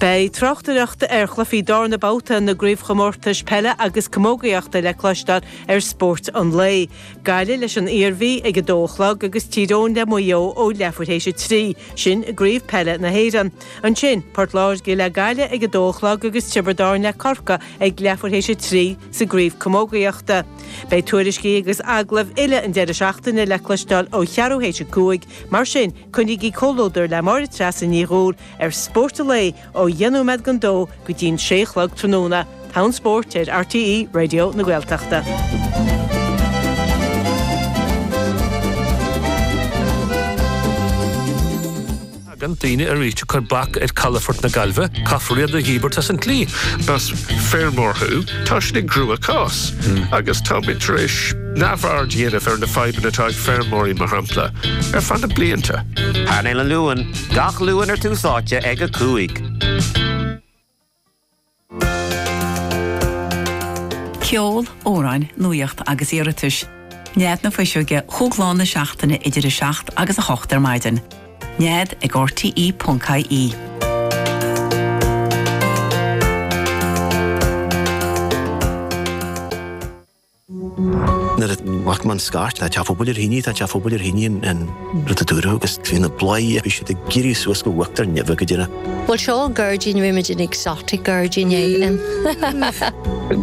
Beidh tráchtaireacht ar chluichí darna babhta na gCraobhchomórtais Peile agus Camógaíochta le cloisteáil ar Spórt an Lae. Gaillimh leis an Iarmhí ag a dó a chlog agus Tír Eoghain le Maigh Eo ó leathuair théis a trí, sin i gCraobh Peile na hÉireann. Ansin, Port Láirge le Gaillimh ag a dó a chlog agus Tiobraid Árann le Corcaigh ag leathuair théis a trí sa gCraobh Camógaíochta. Beidh tuairiscí agus agallaimh uile an deireadh seachtaine le cloisteáil ó cheathrú théis a cúig, mar sin Coinnígí comhluadar le Máire Treasa Ní Dhúill ar Spórt an Lae ó dheich nóiméad dhon dó go dtí'n sé a chlog tráthnóna. Clár Spóirt ar RTÉ Raidió na Gaeltachta. Tagann daoine arís ag cur bac ar chalafort na Gaillimhe, caithfear iad a dhíbirt as an tslí. Más feirmeoir thú, tá sé i gcruachás, agus táimid tar éis. neamhaird a dhéanamh ar na fadhbanna atá ag feirmeoirí mar shampla, ar feadh na blianta. Painéal an Luain, gach Luan ar Tús Áite ag 5. Ceol, amhráin, nuaíocht agus iarratais. Nead na Fuiseoige chomh lá na seachtaine idir 7 agus 8 ar maidin. Nead ag RTE.ie. Nuair a fhaigheann muid scairt tá teach phobail ar thine, tá teach a' phobail ar thine an rud a dúradh agus trí na bladhairí bhí siad ag éirí suas go huachtar neimhe go deireadh. Bhuel seo an gairdín bhí muid in exotic gairdín éigin.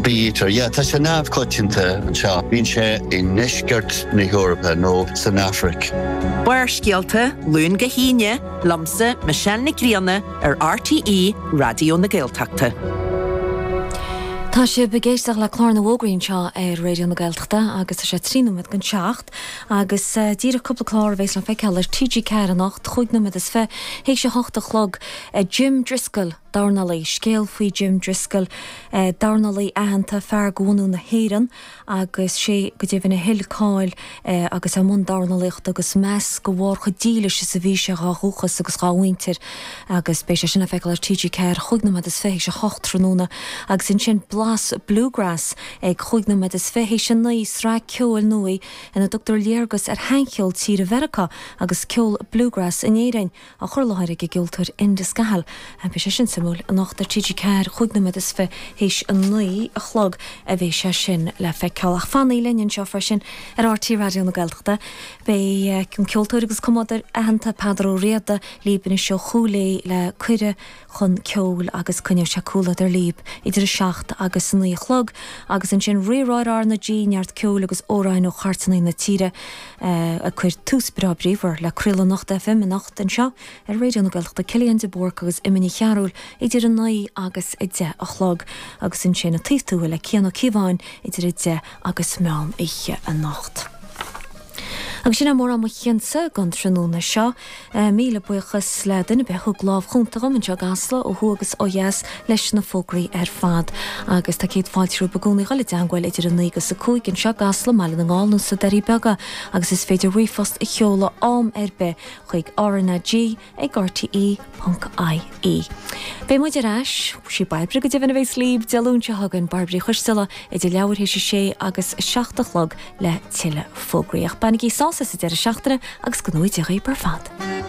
Bítear, yeah, tá sé neamhchoitianta anseo. Bíonn sé i ndeisceart na hEorpa nó san Afraic. Barrscéalta, Luan go hAoine, liomsa, Michelle Nic Grianna, ar RTÉ Raidió na Gaeltachta. Tá sibh ag éisteacht le clár na bhfógraí anseo ar Raidió na Gaeltachta agus tá sé trí nóiméad dhon seacht agus eh, díreach cúpla clár a bhéas le feiceáil ar TG4 anocht chúig nóiméad is fiche théis a hocht a chlog eh, Jim Driscoll dornálaí, scéal faoi Jim Driscoll eh, dornálaí aitheanta fear de bhunadh na hÉireann agus sé go deimhin a thuill cáil agus é i mbun dornálaíochta agus meas de bharr chomh dílis is a bhí sé dhá dhúchas agus dhá mhuintir agus beidh sé sin le feiceáil ar TG4 chúig nóiméad is fiche théis a hocht tráthnóna agus ansin Blas Bluegrass ag chúig nóiméad is fiche théis a naoi, sraith ceoil nua ina dtugtar léargas ar shaincheol tíre Mheiriceá agus ceol Bluegrass in Éirinn. á chur i láthair ag an gceoltóir Enda Scahill. Beidh sé sin suimiúil. Anocht ar TG4, chúig nóiméad is fiche théis a naoi a chlog a bheidh sé sin le feiceáil. Ach fanaigí linn anseo freisin ar RTÉ Raidió na Gaeltachta. Beidh an ceoltóir agus cumadóir aitheanta Peadar Ó Riada, libh anseo ó Chúil Aodha le Cuireadh, chun ceoil agus coinneoidh sé comhluadar libh idir a seacht agus a naoi a chlog agus ansin Rí-Rá ar RnaG, neart ceoil agus amhráin ó chairteanna na tíre ag cur tús breá bríomhar le craoladh Anocht FM anocht anseo ar Raidió na Gaeltachta Cillian de Búrca agus Emma Ní Chearúil idir a naoi agus a deich a chlog agus ansin An Taobh Tuathail le Cian Ó Cíobháin idir a deich agus meán oíche anocht. Agus sin é mórán mo chuidsa don tráthnóna seo. Míle buíochas le duine ar bith a thug lámh chúnta dhom anseo i gCasla, ó thuaidh agus ó dheas, leis na fógraí ar fad. Agus tá céad fáilte romhaibh i gcónaí a dhul i dteangmháil idir a naoi agus a cúig, anseo i gCasla, i mBaile na nGall nó sna Doirí Beaga, agus is féidir ríomhphost a sheoladh am ar bith chuig RnaG, ag RTÉ.ie. Beidh muid ar ais. Sí Bairbre go deimhin a bheas libh Dé Luain seo chugainn, Bairbre Choisdeala, idir leathuair théis a sé agus a seacht a chlog le tuilleadh fógraí. Ach bainigí sásamh as an deireadh seachtaine agus go n-éirí libh ar fad.